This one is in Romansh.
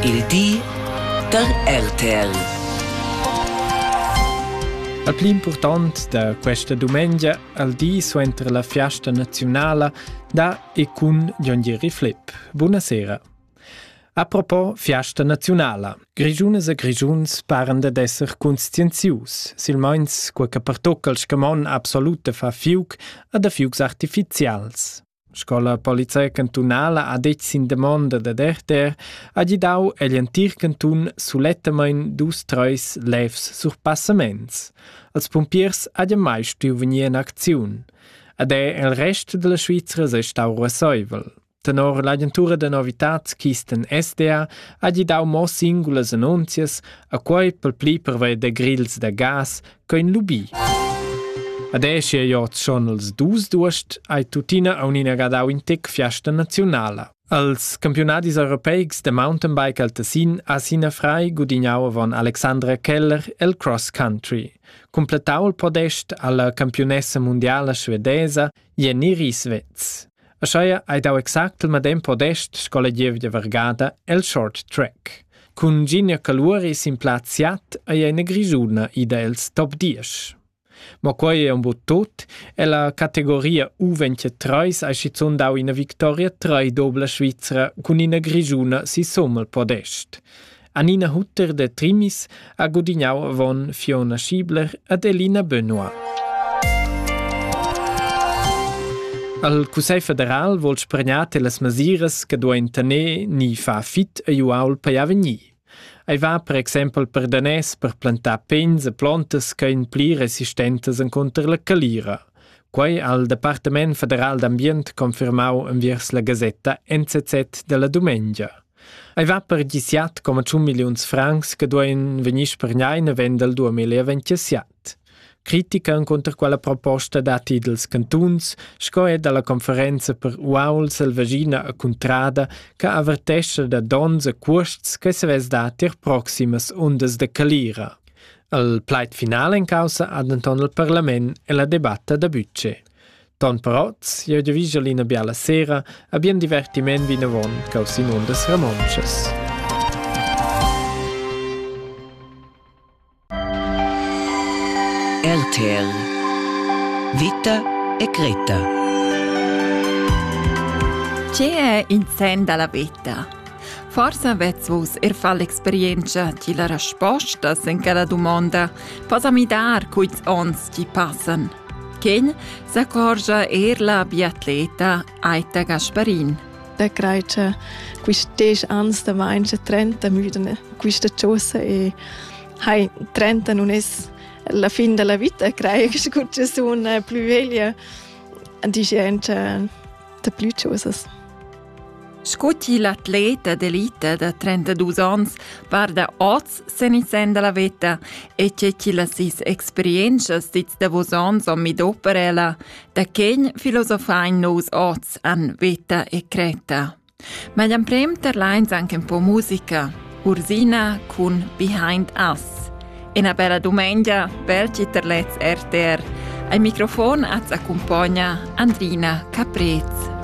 Il di da RTL. La pli impurtant da questa dumengia al di suenter la fiasta naziunala da e cun Jon Gieri Flipp. Buonasera. A propos fiasta naziunala, Grischunas e Grischuns paran dad esser conscienzius, silmeins quei che pertocca il scamon absolut da far fiuc a da fiucs artificials. Sco la polizia cantunala ha detg sin damonda dad RTR, ha gidau egl entir cantun sulettamein dus treis levs surpassaments. Als pumpiers ha mai stuiu vegnir en acziun. Ed è il rest della Svizra sei stau ruasseivel. Tenor l'agentura da novitads Kisten SDA ha gidau mo singulas annunzias, a quei pel pli pervei da grils da gas quein lubi. Adesch ei ord schon els dus duest ai tuttina aunina gadau in tec fiasta nazionala. Als campionadis europeics de mountainbike al Tessin ha sina frei gudignau avon Alexandra Keller el cross country. Completau il podest alla campionessa mundiala svedesa Jeniri svez. Ascheia hai dau exact il medem podest sco la gievgia vargada el short track. Cun Ginia Caluori sin plaz siat ei ina grisuna ida els top 10. Mo quei è un bot tot e la categoria U23 ha schizun dau ina victoria 3 dobla Svizzera cun ina grisuna si sommel podest. Anina Hutter de Trimis ha gudignau avon Fiona Schiebler ed Elina Benoit. Al Cussegl federal vuol spregnar las masiras che duein tener ni far fit a uaul per avegnir. Ei va per exempel per danès per plantar pens e plantas che ein pli resistentes enconter la calira. Quei ha il Departament federal d'ambient confermau enviers la gasetta NZZ della dumengia. Ei va per gisiat coma tschun milliuns francs che duein vegnir spergnai naven dal 2027. Critica encunter quella proposta datti dals cantuns sco er dalla conferenza per uaul selvagina a Cuntrada che avertescha da dons e cuosts che savess dar tier proximas undas de calira. Al plaid final en causa ha denton il parlament e la debatta da budget. Ton però sia diviger l'ina biala sera a bien divertiment vinavon cau Simon das Ramonches. RTL Vita e Greta Ce è in sen dalla vita? Forse avets vus er fa l'experienza di la resposta in quella domanda. Posa mi dar cuits ons ti passan. Ken s'accorgia er la biatleta Aita Gasparin. Da crei che questi anni da meince 30 müdene questa chosa e hai 30 non es la fin della vita crei che scuccia sun più veglia dice anche da più chosas. Sco til atlet d'elita da 32 onns varda oz sen il sen dalla veta e tgei che las sis experientschas dils davos onns han midau per ella, da quen filosofein nus oz an veta e creta. Ma gli emprem terleins anche un po' musica, Ursina cun Behind Us. Una bella domenica, belci terlets RTR. Al microfon az accompagna Andrina Caprez.